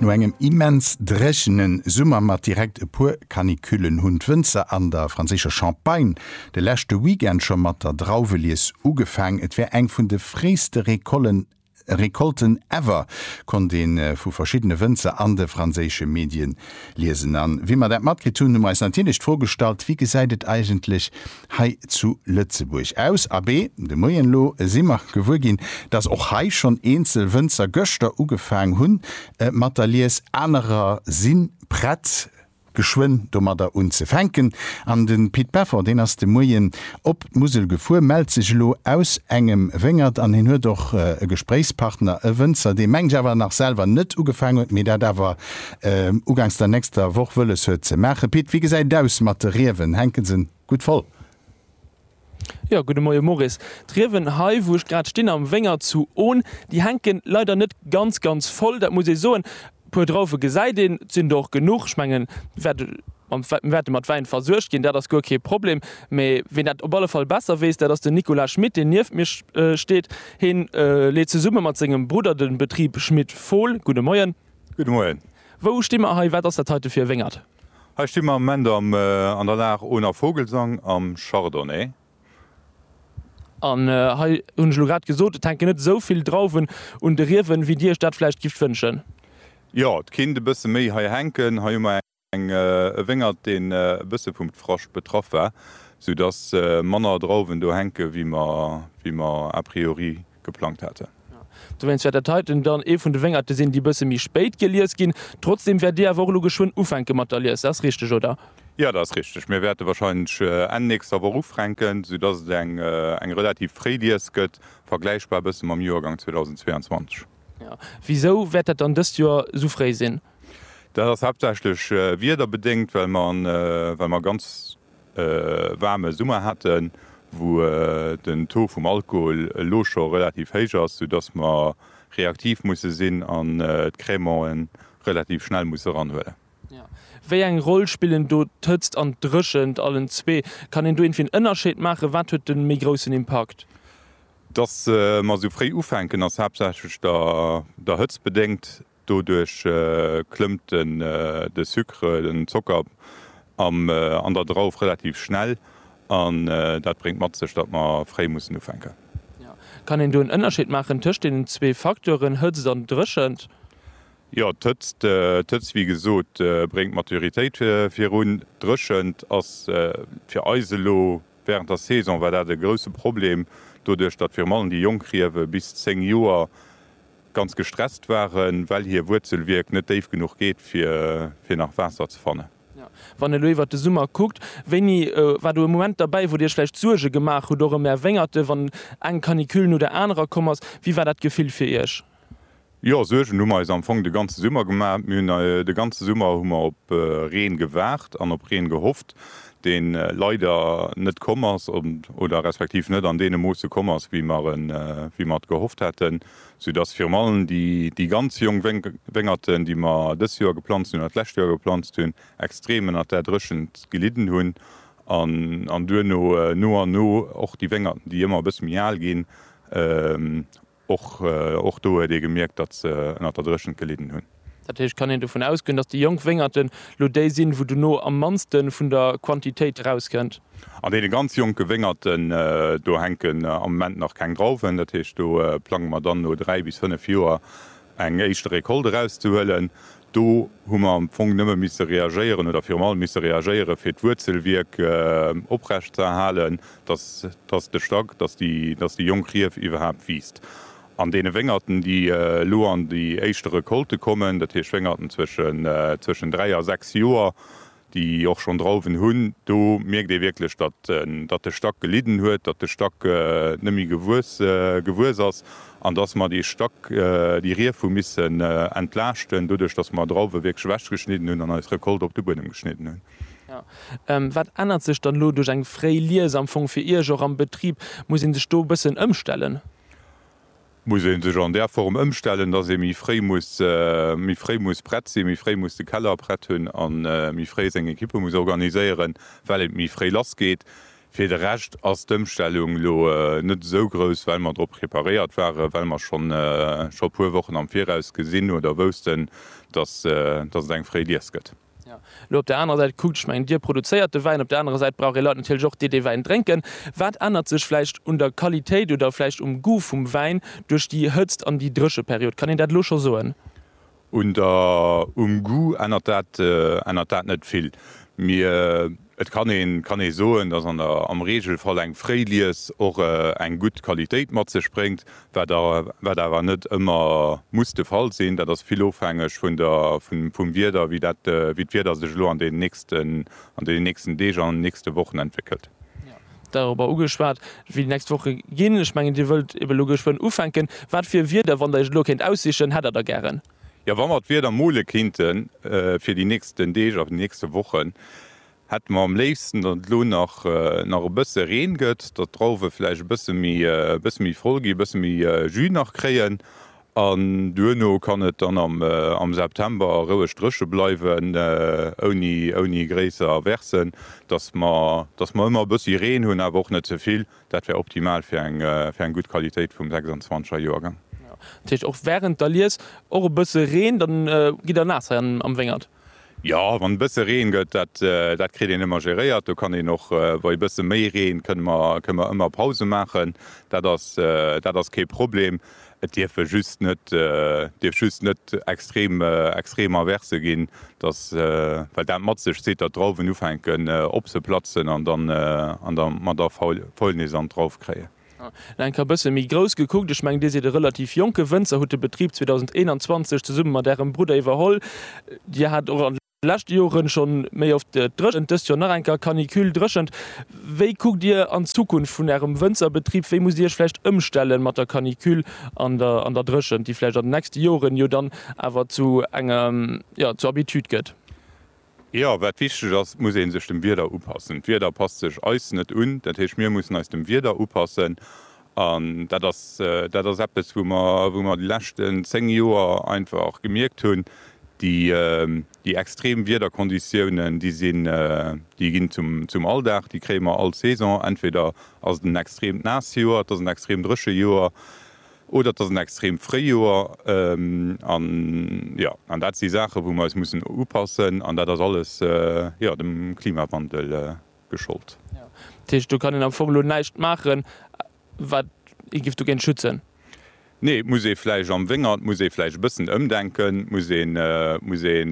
No engem immens dréchene Summer mat direkt e puer Canicullen hunn d'Wënzer an der franséischer Champagne de leschte Weekend scho mat der Drauwelies ugefaang. Et war eng vun de fréiste Recolten ever, konnt ee vu verschiddene Wënzer an de franséische Medien liesen. A wéi mer dat matkritt hunn, hu mer eis natierlech d'Fro gestallt, Wéi gesäit et eigentlech hei zu Lëtzebuerg. Aus Abee de Moien elo si mer gewuer ginn, dass och hei schonn eenzel Wënzer gëschter ugefaang hu mat der Lies, anerer si prett geschwënn domadder unzefänken. An de Pit Peffer, deen ass de Moien op d'Musel gefuer, mellt sech elo aus engem Wéngert an hien huet och e Gespréichspartner, e Wënzer, dee mengt awer nach selwer net ugefaang huet, mee dat awer ugangs der nächster Woch wëlles huet ze maachen. Pit, wéi gesäit et aus mat de Riewen? Hänke se gutt voll? Jo, gudde Moie Maurice. D'Riewen hei, wou ech grad stinn, am Wéngert zu Ohn, déi hänke leider net ganz, ganz voll, dat muss ee soen. E puer Drauwe gesäit een, et sinn der och genuch. Ech mengen, mir wäerte mat Wäin versuergt ginn, dat ass guer kee Problem. Mee ween dat op alle Fall besser weess, dat ass den Nicolas Schmit, deen nieft mir steet. Hie leet zesumme mat sengem Brudder de Betrib Schmit-Fohl. Gudde Moien. Gudde Moien. Wou sti mer hei? Wat ass dat heite fir e Wéngert? Hei sti mer am Moment am an der Lag Ohner Vogelsang am Chardonnay. An hei hunn ech elo grad gesot, et hänken net esou vill Drauwen un de Riewen, wéi Dir Iech dat vläicht gift wënschen. Jo, et kinnt e bësse méi hei hänken. Hei hu mer eng. Eng e Wéngert deen e bësse vum Dfrascht betraff war, sou dass manner Drauwen do hänke wéi mer wéi mer a priori geplangt haten. Dowéinst wäert dat heiten dann ee vun de Wéngerte sinn déi bësse méi spéit gelies ginn. Trotzdem wäert Dir awer och elo geschwënn ufänke mat der Lies, dat ass richteg oder? Jo, dat ass richteg. Mir wäerte wahrscheinlech Enn nächster Woch ufränken, sou dass et eng eng relativ fréi Lies gëtt, vergläichbar e bësse mam Joergang 2022. Jo, wisou wäert dat dann dëst Joer sou fréi sinn? Dat ass haaptsächlech wiederbedéngt, well mer e ganz waarme Summer haten, wou den Taux vum Alkohol elo scho relativ héich ass, soudass mer reaktiv musse sinn an d'Crémante relativ schnell musse eranhuelen. Wéi eng Roll spillen do d'Hëtzt an d'Dréchent, allen zwee? Kann een do iergendwéi en Ënnerscheed maachen? Wat huet de méi groussen Impakt? Dass mer esou fréi ufänken, ass haaptsächlech der Hëtzt bedéngt. Doduerch klëmmt de Sucre, den Zocker, an der Drauf relativ schnell an dat bréngt mat sech, datt mer fréi mussen ufänken. Kann een do en Ënnerscheed maachen tëscht deenen zwee Facteuren, Hëtzt an Dréchent? Jo, d'Hëtzt, wéi gesot, bréngt d'Maturitéit virun. D'Dréchent ass fir eis elo wärend der Saison war dat e grousse Problem, doduerch datt virun allem déi jonk Riewe bis 10 Joer ganz gestresst waren, well hir Wuerzelwierk net déif genuch geet, fir nach Waasser ze fannen. Wann elo iwwert de Summer kuckt, wéini war do e Moment derbäi, wou Dir Iech vläicht Suerge gemaach hutt, och ëm Är Wéngerte, wann eng Canicule no der anerer komm ass? Wéi war dat Gefill fir Iech? Jo, Suergen hu mer eis am Fong de ganze Summer gemaach. Mir hunn de ganze Summer hu mer op Reen gewaart an op Reen gehofft. dee leider net komm ass oder respektiv net an deene Moosse komm ass, wéi mer et gehofft haten, soudass virun allem déi ganz jonk Wéngerten, déi mer dëst Joer geplanzt hunn oder d'lescht Joer geplanzt hunn, extrem ënnert där Dréchent gelidden hunn an duerno no an no och déi Wéngerten, déi ëmmer e bësse méi al ginn, Och och do huet ee gemierkt, datt se ënnert der Dréchent gelidden hunn. Dat heescht, kann een dovun ausgoen, datt déi jonk Wéngerten elo déi sinn, wou dono am mannste vun der Quantitéit erauskënnt? An deene ganz jonke Wéngerten, do hänken am Moment nach keng Drauwen. Dat heescht, do plange mer dann no dräi bis fënnef Joer eng éischte Recolte erauszehuelen. Do hu mer am Fong nëmme misse reagéieren oder virum allem misse reagéiere fir d'Wuerzelwierk oprecht ze erhalen, dass, dass de Stack, dass déi, dass déi jonk Rief iwwerhaapt wiisst. An deene Wéngerten, déi elo an déi éischte Recolte kommen, dat heescht Wéngerten zwëschen, zwëschen dräi a sechs Joer, déi och schonn Drauwen hunn, do mierkt ee wierklech, datt de Stack gelidden huet, datt de Stack net méi gewuess ass an datt mer dee Stack, déi Rief hu missen entlaaschten, doduerch datt mer Drauwe wierklech ewechgeschnidden hunn an eis Recolte op de Buedem geschnidden hunn. Wat ännert sech dann elo duerch eng fréi Lies am Fong fir Iech och am Betrib? Muss ee sech do e bëssen ëmstellen? muss ee sech an där Form ëmstellen, dass ee méi fréi muss, méi fréi muss prett sinn, méi fréi muss de Keller prett hunn a méi fréi seng Equippe muss organiséieren, well et méi fréi lassgeet. Fir de Rescht ass d'Ëmstellung elo net esou grouss, well mer drop preparéiert waren, well mer schonn e puer Wochen am Viraus gesinn oder woussten, dass et eng fréi Lies gëtt. Lo op der anerer Säit kuckt, ech mengen, Dir produzéiert de Wäin, op der anerer Säit brauch ee Leit natierlech och, déi dee Wäin drénken. Wat ännert sech vläicht un der Qualitéit oder vläicht um Goût vum Wäin duerch déi Hëtzt an déi Drécheperiod? Kann een dat elo scho soen? Um Goût ännert dat net vill. Et kann ee kann ee soen, dass an der am Regelfall eng fréi Lies och eng gutt Qualitéit mat sech bréngt, wat a wat awer net ëmmer muss de Fall sinn. Dat ass vill ofhängeg vun der vun vum Wieder, wéi dat wéi d'Wieder sech elo an deenen nächsten an deenen nächsten Deeg an nächste Wochen entwéckelt. Dorobber ugeschwat, wéi déi nächst Woche ginn. Ech mengen, Dir wëllt ebe elo geschwënn ufänken. Wat fir e Wieder, wann Der Iech elo kéint aussichen, hätt Der da gären? Jo, wa mer d'Wieder mole kinnte fir déi nächsten Deeg a nächste Wochen, hätte mer am léifsten, datt et elo nach e bësse Reen gëtt, datt d'Drauwe vläicht e bësse méi voll ginn, e bësse méi Jus nach kréien an duerno kann et dann am September roueg dréche bleiwen, ouni gréisser Aversen, datt mer ëmmer e bëssi Reen hunn, awer och net ze vill. Dat wär optimal fir eng fir eng gutt Qualitéit vum 26 er Joergang. Dat heescht och während der Lies och e bësse Reen, dann gitt der naass hei am Wéngert? Jo, wann e bësse Reen gëtt, dat dat kritt een ëmmer geréiert. Do kann een och bei e bësse méi Reen kënne mer kënne mer ëmmer Pause maachen. Dat ass dat ass kee Problem. Et dierfe just net, dierf just net extrem, extrem Averse ginn, dass, well dat mat sech zitt, datt d'Drauwen ufänken opzeplatzen an dann, an da mer da Faul, Faulnis an d'Drauf kréien. Elo eng Kéier e bësse méi grouss gekuckt, ech mengen, Dir sidd e relativ jonke Wënzer, hutt de Betrib 2021 zesumme mat Ärem Brudder iwwerholl. Dir hat och an. leschte Joren schon méi oft dréchent, dëst Joer nach enker Canicule dréchent. Wéi kuckt dir an d'Zukunft vun ärem Wënzerbetrib? Wéi musst dir iech vläicht ëmstellen mat der Canicule an der an der Dréchent, déi vläicht an den nächste Joren jo dann awer zu enger, jo, zur Habitude gëtt? Jo, wat wichteg ass, et muss ee sech dem Wieder upassen. D'Wieder passt sech eis net un, dat heescht mir mussen eis dem Wieder upassen An dat ass, dat ass eppes, wou mer, wou mer déi leschten zéng Joer einfach gemierkt hunn, déi, déi extrem Wiederkonditiounen, déi sinn, déi ginn zum, zum Alldag, déi kréie mer all Saison. Entweder ass et en extremt naasst Joer, et ass en extrem dréche Joer oder et ass en extremt Fréijoer. An, jo, an dat si Saachen, wou mer eis mussen upassen. An dat ass alles, jo, dem Klimawandel geschollt. Dat heescht, do kann een am Fong elo näischt maachen, wat ee giff dogéint schützen? Nee, muss ee vläicht am Wéngert, muss ee vläicht e bëssen ëmdenken, muss ee, muss ee,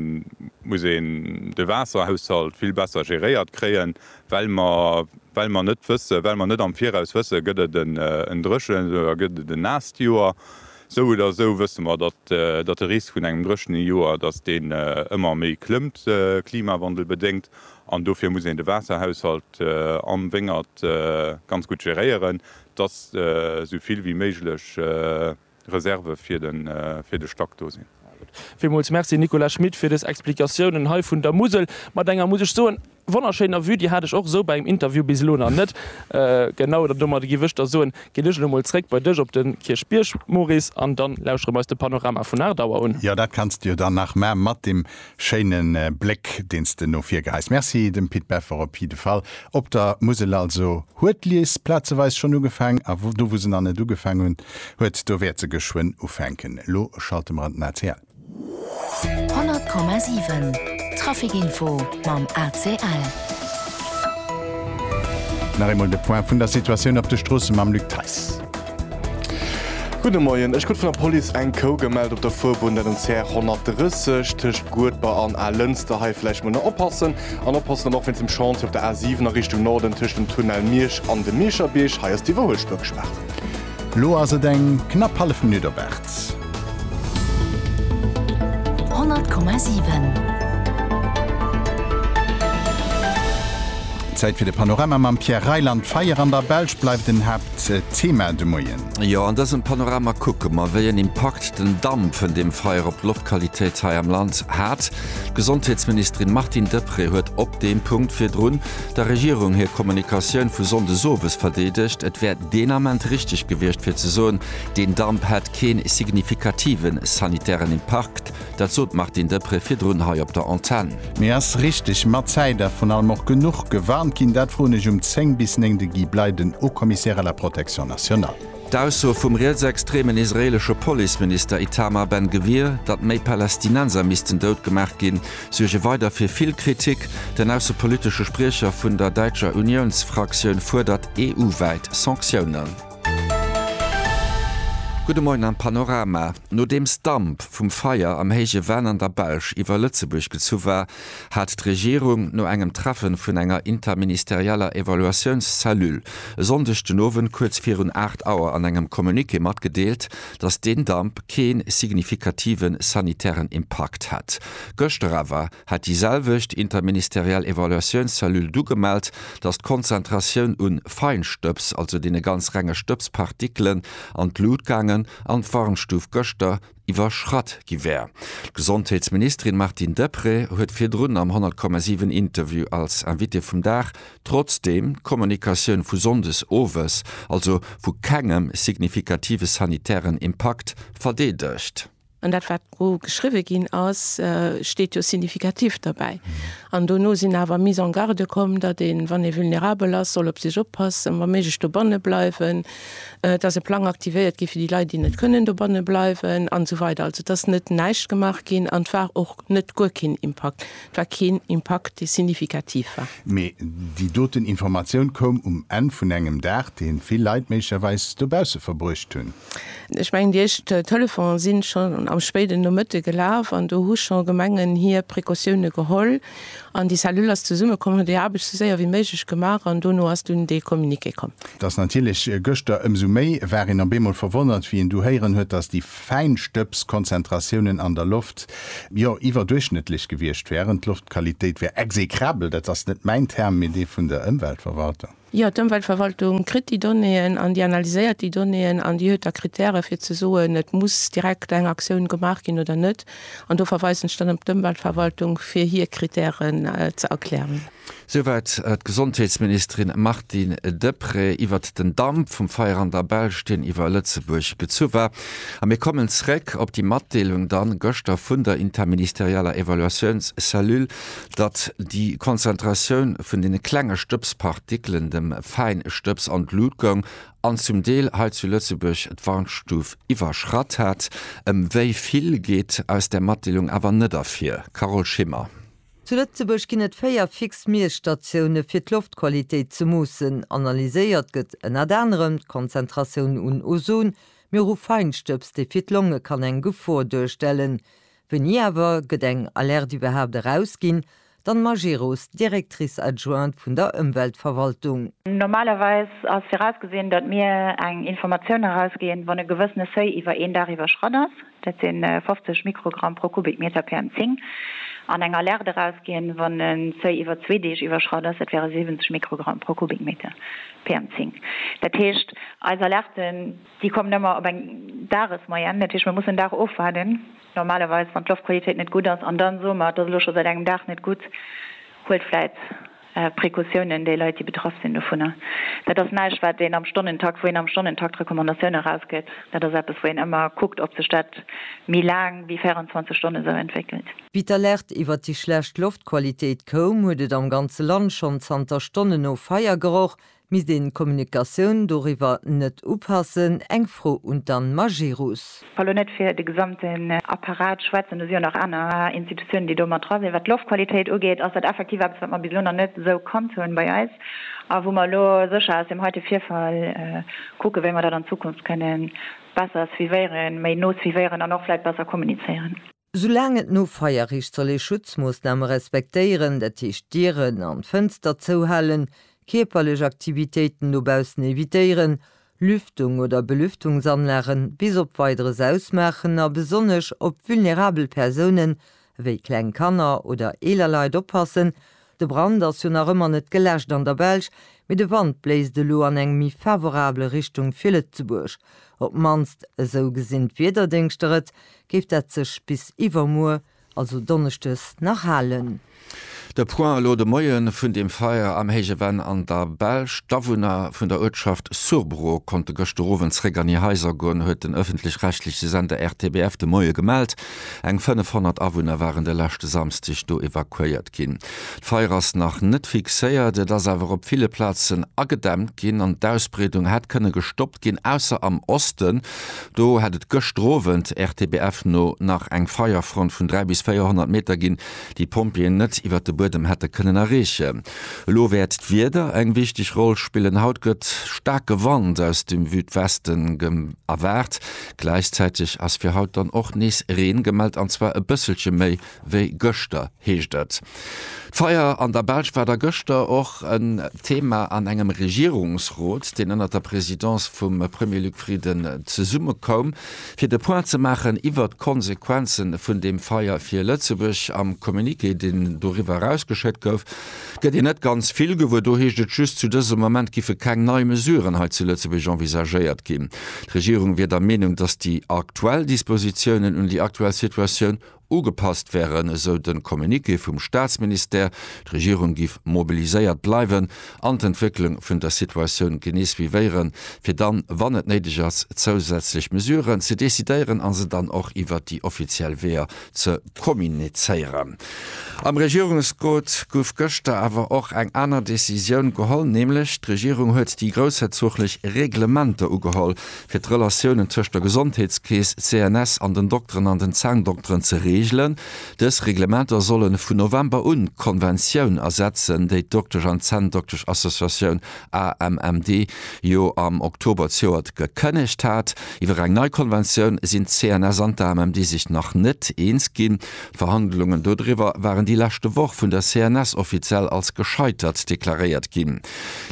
muss een de Waasserhaushalt vill besser geréiert kréien, well mer, well mer net wësse, well mer net am Viraus wësse, gëtt et en dréchent oder gëtt et en naasst Joer. Sou oder sou wësse mer, datt, datt de Risk vun engem dréchene Joer, datt deen ëmmer méi klëmmt, klimawandelbedéngt. An dofir muss een de Waasserhaushalt am Wéngert ganz gutt geréieren, dass esou vill wéi méiglech Reserve fir de Stack do sinn. Villmools Merci Nicolas Schmit fir des Explikatiounen hei vun der Musel mat enger, muss ech soen, wonnerschéiner Vue. Déi hat ech och esou bei engem Interview bis elo nach net genau. An domadder giff ech der soen, ginn ech elo mol zréck bei dech op de Kierchbierg, Maurice, an dann lauschere mer eis de Panorama vun Aardauer un. Jo, dat kanns de jo dann nach maa mat dem. Schéinen Bléck deens de no vir geheis. Merci dem Pit Beffer op jidde Fall. Op der Musel also huet d'Lies plazeweis schonn ugefaang a do wou se nach net ugefaang hunn huet do wäert se geschwënn ufänken. Elo schalte mer an den ACL. 100,7 Trafic Info mam ACL. Nach eemol de Point vun der Situatioun op de Stroosse mam Luc Theiss. Gudde Moien, ech krut vun der Police eng Kou gemellt op der Fuerbunn, dat um CR 130 tëscht Guedber an Alënster. Hei vläicht mol na oppassen an oppassen dann och wéinst dem Chantier op der A 7 a Richtung Norden tëscht dem Tunnel Miersch an dem Mierscherbierg. Hei ass d'Iwwerhuelspur gespaart. Lo ass et eng knapp hallef Minutt op 8. 100,7. Zäit fir de Panorama mam Pierre Reyland. D'Feier an der Belsch bleift en Haapt. Thema de Moien. Jo, an dësem Panorama kucke mer, wéi en Impakt den Damp vun deem Feier op d'Loftqualitéit hei am Land hat. D'Gesondheetsministerin Martine Deprez huet op deem Punkt virdrun der Regierung hir Kommunikatioun vu sonndes owes verdeedegt. Et wär deen Ament richteg gewiescht fir ze soen, deen Damp hätt kee signifikativen sanitären Impakt. Dat sot d'Martine Deprez virdrun hei op der Antenn. Mee ass richteg mat Zäit a vrun allem och genuch gewarnt ginn? Dat froen ech um 10 bis 9 de Guy Bley, den Haut-Commissaire à la Protection nationale. D'Ausso vum rietsextremen israeelesche Policeminister Itamar Ben-Gvir, datt méi Palästinenser missten dout gemaach ginn, suerge weider fir vill Kritik. Den aussepolitesche Spriecher vun der däitscher Uniounsfraktioun fuerdert EU-wäit Sanktiounen. Gudde Moien am Panorama. Nodeems Damp vum Feier am héije Venn an der Belsch iwwer Lëtzebuerg gezu war, hat d'Regierung no engem Treffe vun enger interministerieller Evaluatiounscellule e Sonndeg den Owend kuerz virun 8 Auer an engem Communiqué matgedeelt, datt deen Damp kee signifikative sanitären Impakt hätt. Gëschter awer hat déi selwecht interministeriell Evaluatiounscellule du gemellt, dass d'Konzentratioun un Feinstëbs, also deene ganz renge Stëbspartikelen, an d'Lut gaangen an d'Warnstuf gëschter iwwerschratt gi wär. D'Gesondheetsministerin Martine Deprez huet virdrun am 100,7 Interview als Invitée vum Dag trotzdeem d'Kommunikatioun vu sonndes owes, also vu kengem signifikativen sanitären Impakt, verdeedegt. An dat, wat do geschriwwe ginn ass, steet jo signifikativ derbäi. An dono sinn awer Mises en garde komm, datt ee wann ee vulnerabel ass, soll op sech oppassen, wa méiglech dobanne bleiwen, datt e Plang aktivéiert gétt fir déi Leit, déi net kënnen dobanne bleiwen, an esou weider. Also et ass net näischt gemaach ginn an et war och net guer keen Impakt. war keen Impakt, dee signifikativ war. Mee déi doten Informatioun koum um Enn vun engem Dag, dee vill Leit méiglecherweis dobausse verbruecht hunn. Ech mengen, déi éischt Telefone si schonn am spéiden Nomëtte gelaf an do hu scho Gemengen hir Precautioune geholl an déi Cellule ass zesummekomm, huet hir Aarbecht sou séier wéi méiglech gemaach an dono ass dunn dee Communiqué komm. Et ass natierlech gëschter ëmsou méi, war een op eemol verwonnert, wéi een du héieren huet, dass déi. Fäinstëbskonzentratiounen an der Loft, jo, iwwerduerchschnëttlech gewiescht wären. D'Loftqualitéit wär execrabel, dat ass net mäin Term, mee dee vun der Ëmweltverwaltung. Jo, d'Ëmweltverwaltung kritt déi Donnéeën an déi analyséiert déi Donnéeën an déi huet da Krittäre fir ze soen, et muss direkt eng Aktioun gemaach ginn oder net. An do verweisen ech dann op d'Ëmweltverwaltung, fir hir Krittären ze erklären. Souwäit d'Gesondheetsministerin Martine Deprez iwwert den Damp vum Feier an der Belsch, deen iwwer Lëtzebuerg gezu war. A mir kommen zréck op déi Matdeelung dann gëschter vun der interministerialer Evaluatiounscellule, datt déi Konzentratioun vun deene klenge Stëbspartikelen, dem Fäinstëbs, an d'Lut goung an zum Deel hei zu Lëtzebuerg d'Warnstuf iwwerschratt hat. Ëm wéi vill geet aus där Matdeelung awer net ervir. Carole Schimmer. Zu Lëtzebuerg ginn et véier fix Miesstatioune fir d'Loftqualitéit ze moossen. Analyséiert gëtt ënnert anerem d'Konzentratioun un Ozon, mee och u Feinstëbs, dee fir d'Longe kann eng Gefor duerstellen. Wéini awer gëtt eng Alerte iwwerhaapt erausginn? D'Anne Majerus, Directrice adjointe vun der Ëmweltverwaltung. Normalerweis ass virausgesinn, datt mir eng Informatioun erausginn, wann e gewëssene Seuil iwwer een Dag iwwerschratt ass. dat si 50 Mikrogramm pro Kubikmeter PM10, an eng Alerte erausginn, wann en Seuil iwwer zwee Deeg iwwerschratt ass, dat wäre 70 Mikrogramm pro Kubikmeter PM10. Dat heescht, eis Alerten, déi kommen ëmmer op eng Dagesmoyenne. Dat heescht, mir mussen en Dag ofwaarden, normalerweis, wann d'Loftqualitéit net gutt ass, an da soe mer, et ass elo scho säit engem Dag net gutt, huelt vläit. Precautiounen, déi Leit, déi betraff sinn dovunner. Dat ass näischt, wat een am Stonnentakt, wou een am Stonnentakt Recommandatioune erausgëtt. Dat ass eppes, wou een ëmmer kuckt, ob sech dat méi laang wéi 24 Stonne esou entwéckelt. Wéi d'Alerte iwwert déi schlecht Loftqualitéit koum, huet et am ganze Land schonn zanter Stonnen no Feier geroch. Misst een d'Kommunikatioun doriwwer net upassen? Eng Fro un d'Anne Majerus. Well elo net fir de gesamten Apparat schwätzen, do si jo nach aner Institutiounen, déi do mat dra sinn. Wat d'Loftqualitéit ugeet, ass dat effektiv eppes, wat mer bis elo nach net esou kannt hunn bei eis a wou mer elo sécher aus deem heite Virfall kucken, wéi mer dat an Zukunft kënnen besser suivéieren, méi no suivéieren an och vläicht besser kommunizéieren. Soulaang et no Feierrecht soll ee Schutzmoossname respektéieren, dat heescht d'Dieren an d'Fënster zouhalen, kierperlech Aktivitéiten dobaussen evitéieren, Lüftung oder Belüftungsanlagen bis op Weideres ausmaachen a besonnesch op vulnerabel Persounen ewéi kleng Kanner oder eeler Leit oppassen, De Brand ass jo nach ëmmer net geläscht an der Belsch, mee de Wand bléist elo an eng méi favorabel Richtung fir Lëtzebuerg. Op d'mannst esou gesinn d'Wiederdéngschter et, géif dat sech bis iwwermuer, also Donneschdes, nach halen. De Point elo de Moien vun dem Feier am Héije Venn an der Belsch. D'Awunner vun der Uertschaft Surbrot konnte gëschter Owend zeréck an hir Haiser goen, huet den ëffentlech-rechtleche Sender RTBF de Moie gemellt. Eng 500 Awunner waren de leschte Samsdeg do evakuéiert ginn. D'Feier ass nach net fixéiert, et ass awer op ville Plazen agedämmt ginn an d'Ausbreedung hätt kënne gestoppt ginn, ausser am Osten. Do hätt et gëschter Owend, RTBF no, nach eng Feierfront vun 300 bis 400 Meter ginn, déi d'Pompjeeën net iwwer de Buedem hätte kënnen erreechen. Elo wäert d'Wieder eng wichteg Roll spillen. Haut gëtt staarke Wand aus dem Südwesten erwaart. Gläichzäiteg ass fir haut dann och nees Reen gemellt, an zwar e bësselche méi wéi gëschter, heescht et. D'Feier an der Belsch war da gëschter och en Thema an engem Regierungsrot, deen ënnert der Presidence vum Premier Luc Frieden zesummekoum, fir de Point ze maachen iwwert d'Konsequenze vun deem Feier fir Lëtzebuerg. Am Communiqué, deen doriwwer erausgeschéckt gouf, Gëtt een net ganz vill gewuer. Do heescht et just, zu dësem Moment géife keng nei Mesuren hei zu Lëtzebuerg envisagéiert ginn. D'Regierung wier der Meenung, datt déi aktuell Dispositiounen un déi aktuell Situatioun ugepasst wären, esou de Communiqué vum Staatsministère. D'Regierung géif mobiliséiert bleiwen an d'Entwécklung vun der Situatioun genee suivéieren, fir dann, wann et néideg ass, zousätzlech Mesuren ze decidéieren a se dann och iwwer déi offiziell Weeër ze kommunizéieren. Am Regierungsrot gouf gëschter awer och eng aner Decisioun geholl, nämlech d'Regierung huet déi groussherzoglech Reglementer ugeholl, fir d'Relatiounen tëscht der Gesondheetskeess, CNS, an den Dokteren an den Zahndokteren ze reegelen. Dës Reglementer solle vun November un d'Konventioun ersetzen, déi d'Doktesch an d'Zänndoktesch-Associatioun AMMD jo am Oktober zejoert gekënnegt hat. Iwwer eng nei Konventioun sinn d'CNS an d'AMMD sech nach net eens ginn. D'Verhandlungen dodriwwer waren déi leschte Woch vun der CNS offiziell als gescheitert deklaréiert ginn.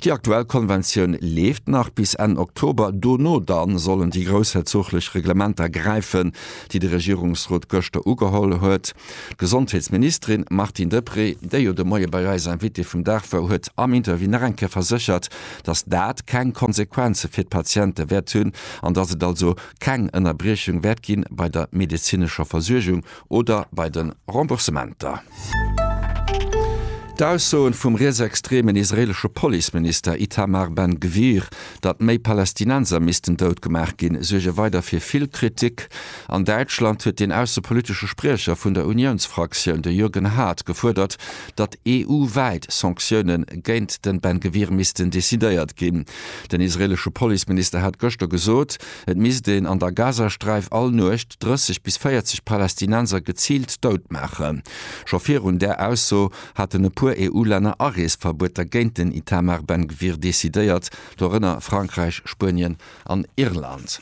Déi aktuell Konventioun leeft nach bis Enn Oktober, dono da sollen déi groussherzoglech Reglementer gräifen, déi de Regierungsrot gëschter ugeholl huet. D'Gesondheetsministerin Martine Deprez, déi jo de Moie bei eis Invitée vum Dag wor, huet am Interview nach eng Kéier verséchert, datt dat keng Konsequenze fir d'Patiente wäert hunn an datt et also keng Ënnerbriechung wäert gi bei der medezinescher Versuergung oder bei de Remboursementer. D'Aussoen vum rietsextremen israeelesche Policeminister Itamar Ben Gvir, datt méi Palästinenser missten dout gemaach ginn, suerge weider fir vill Kritik. An Däitschland huet den aussepolitesche Spriecher vun der Uniounsfraktioun, de Jürgen Haart, gefuerdert, datt EU-wäit Sanktioune géint den Ben Gvir missten decidéiert ginn. Den israeelesche Policeminister hat gëschter gesot, et misst een an der Gazasträif all Nuecht 30 bis 40 Palästinenser geziilt dout maachen. Scho virun där Ausso haten e puer EU-Länner Areesverbueter géint den Itamar Ben Gvir decidéiert, dorënner Frankräich, Spuenien an Irland.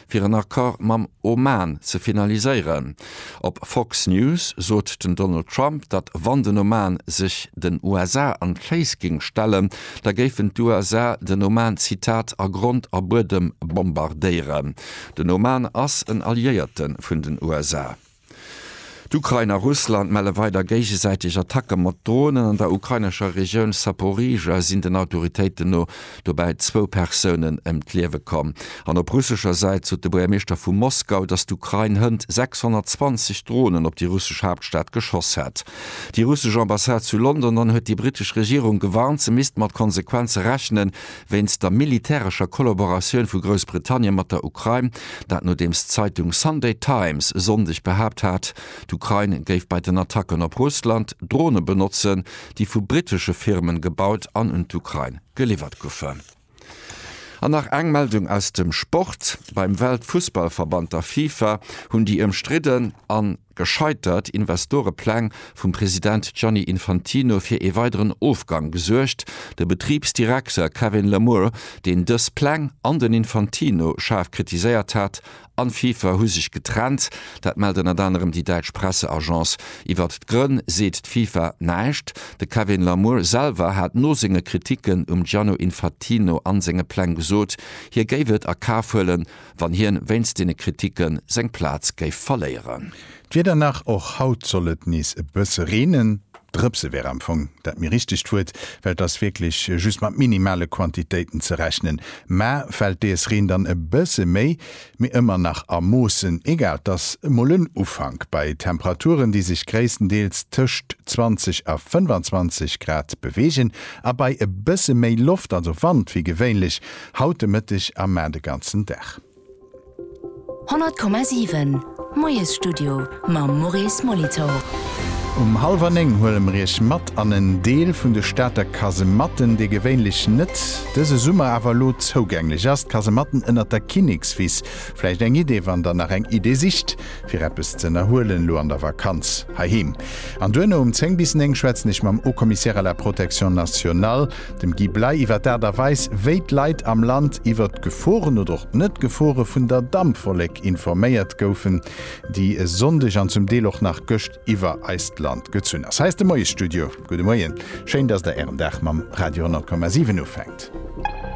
fir en Accord mam Oman ze finaliséieren. Op Fox News sot den Donald Trump, datt wann den Oman sech den USA an d'Féiss géing stellen, da géifen d'USA den Oman, Zitat, a Grond a Buedem bombardéieren. Den Oman ass en Alliéierte vun den USA. D'Ukrain a Russland melle weider géigesäiteg Attacke mat Dronen. An der ukrainescher Regioun Saporižžja sinn den Autoritéiten no dobäi zwou Persounen ëm d'Liewe komm. An op russescher Säit sot de Buergermeeschter vu Moskau, datt d'Ukrain hënt 620 Dronen op déi russesch Haaptstad geschoss hätt. Déi russesch Ambassade zu London dann huet déi britesch Regierung gewarnt, se misst mat Konsequenze rechnen, Wéinst der militärescher Kollaboratioun vu Groussbritannien mat der Ukrain, dat nodeems d'Zeitung Sunday Times e Sonndeg behaapt hat, d'Ukrain géif bei den Attacken op Russland Drone benotzen, déi vu brittesche Firmen gebaut an un d'Ukrain geliwwert goufen. An nach eng Meldung aus dem Sport, Beim Weltfussballverband, der FIFA, hunn déi ëmstridden an. Gescheitert Investorepläng vum President Gianni Infantino fir ee weideren Ofgang gesuergt. De Betribsdirekter Kevin Lamour, deen dës Pläng an den Infantino schaarf kritiséiert hat, an d'FIFA hu sech getrennt. Dat mellt ënnert anerem déi däitsch Presseagence. Iwwert d'Grënn seet d'FIFA näischt. De Kevin Lamour selwer hat no senge Kriticken um Gianno Infatino an senge Pläng gesot, hie géif et a Kaf huelen, wann hien wéinst deene Kritiken seng Plaz géif verléieren. D'Wieder nach, Och haut soll et nees e bësse reenen. Drëpse wär am Fong dat méi richtegt Wuert, well et ass wierklech just mat minimale Quantitéiten ze rechnen. Mä fält dees Reen dann e bësse méi, mee ëmmer nach a Moossen, egal, et ass emol en Ufank bei Temperaturen, déi sech gréisstendeels tëscht 20 a 25 Grad beweegen a bei e bësse méi Loft, also Wand, wéi gewéinlech Haut de Mëtteg a mar de ganzen Dag. 100,7 Moiesstudio mam Maurice Molitor. Um hallwer 9 huele mer Iech mat an en Deel vun de Stater Kasematten, dee gewéinlech net, dëse Summer awer elo zougänglech ass, d'Kasematten ënnert der Kinnekswiss. Vläicht eng Idee, wann der nach eng Idee sicht fir eppes ze ënnerhuelen elo an der Vakanz heiheem. An duerno um 10 bis 9 schwätzen ech mam Haut-Commissaire à la Protection Nationale, Dem Guy Bley iwwer d'Aart a Weis, wéi d'Leit am Land iwwer d'Geforen oder och d'Net-Gefore vun der Dampwollek informéiert goufen, déi e Sonndeg an zum Deel och nach gëscht iwwer eist Land gezunn ass. Hei ass de Moiesstudio. Gudde Moien, schéin, dass Der Ären Dag mam Radio 10,7 ufänkt.